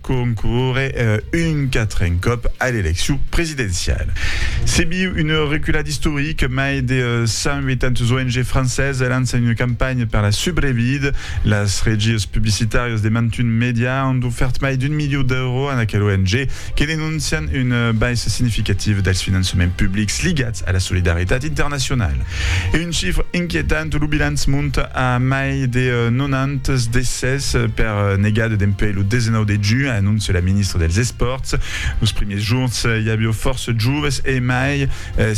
concórrer un quatren còp a l'eleccion presidenciala. Se viu una reculada istorica, mai de 180 ONG francesas lançan una campanha per la subrevida. Las regias publicitàrias de mantun mèdia an ofèrt mai d'un milió d'èuros a aquela ONG, que denoncian una baissa significativa dels finançaments publics ligats a la solidaritat internacionala. Un chifre inquietant, lo bilanç monta a mai de 90 decès per negada dempuèi lo 19 de junh, anóncia la ministra dels Espòrts. Los primièrs jorns i aviá fòrça joves e mai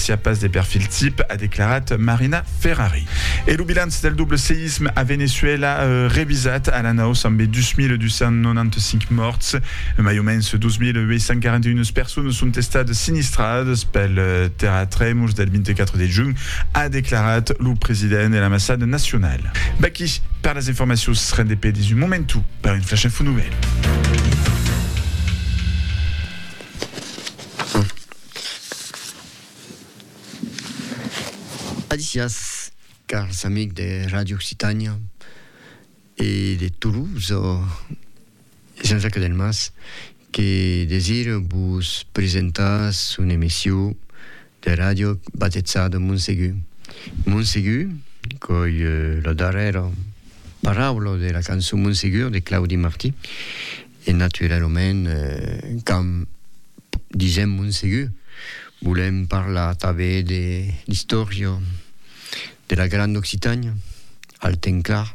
siá pas de perfil tip, a declarat Marina Ferrari. E lo bilanç del doble seisme a Veneçuèla revisat a l'anaus ambe 2.295 mòrts. Mai o mens 2.841 personas son estadas sinistradas pel terratremol del 24 de junh, a declarat lo president de l'ambassada nacionala. Vaqui per las informacions, rendé pedis un momentu per un Flash Info Nouvèl. Adicias, cars amics de Radio Occitània e de Toulouse. Jean-Jacques Delmas, que desire vos presentar son emission de ràdio batejada Montsegur. Montsegur, qu'ei la darrèra paraula de la cançon Montsegur de Claudi Martí, e naturalament quand disèm Montsegur volèm parlar tanben de l'istòria De la Grande Occitània, al temps clar,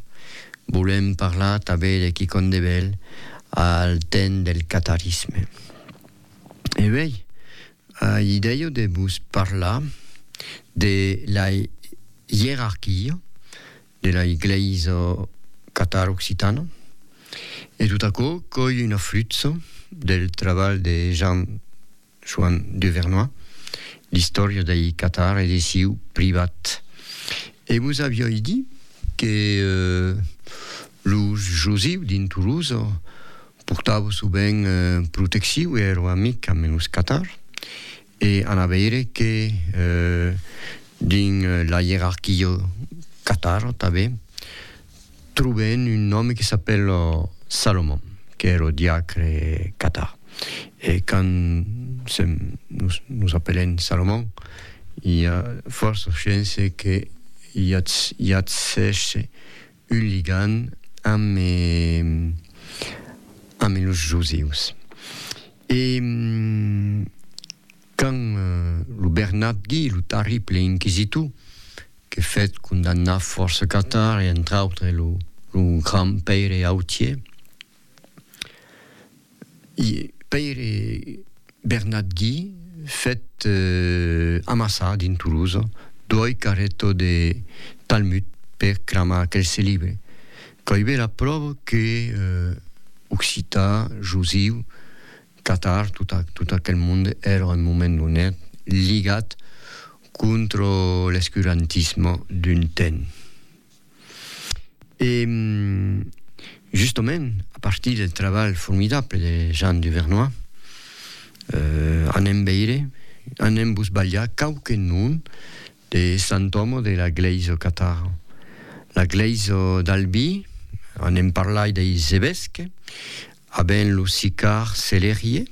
volèm parlar tanben de quicòm de bèl al temps del catarisme. E uèi, ai idèia de vos parlar de la ierarquia de la Glèisa Catar Occitana e tot aquò coi una flutsa del trabalh de Jean Joan de Vernois, l'istòria dei Catar e de siu privat. E vos avioi dit que los josiu dins Toulouse portavo sovent protecciu e ero amic amb los Catar e an a veire que dins la ierarquio Catar tanben. Trobèn un nòme que s'apèla Salomon, qu'ère lo diacre Catà. E quand sèm, nos, nos apelèn Salomon, i a fòrça chance que i atzèshe un ligand ame, ame los Josius. E Quand lo Bernabdí, lo tarrible inquisitor, que fèt condamnar fòrça catar e entre autres lo grand Pèire Autier, Pèire Bernabdí fèt amassar dins Toulouse doi carretons de Talmud per cramar aquelse libre, quò i be la pròva que occitan, josiu, Qatar, tot, tot aquel mond èra un moment donat ligat contra l'escurantisme d'un temps. E justament a partir del trabalh formidable de Jean Duvernoy euh anem veire, anem vos balhar quauque nom de sant òme de la glèisa Qatar. La glèisa d'Albi, anem parlai deis evesques, A ben lo Sicar Celerie,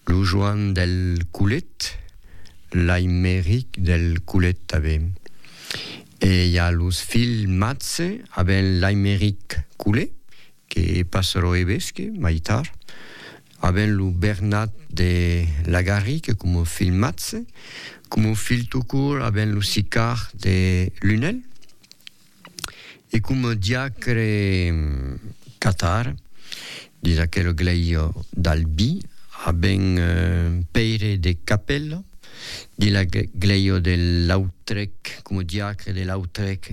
lo Joan del Colet, l'Aimeric del Colet tanben. E i a los filhs Matze, a ben l'Aimeric Colet, que passa lo evesque mai tard, a ben lo Bernat de Lagarric coma filh Matze, coma filh tout court a ben lo Sicar de Lunel. E coma diacre catar dins aquela glèisa d'Albi, a ben Pèire de Capèla, dins la glèisa de Lautrèc, coma diacre de Lautrèc,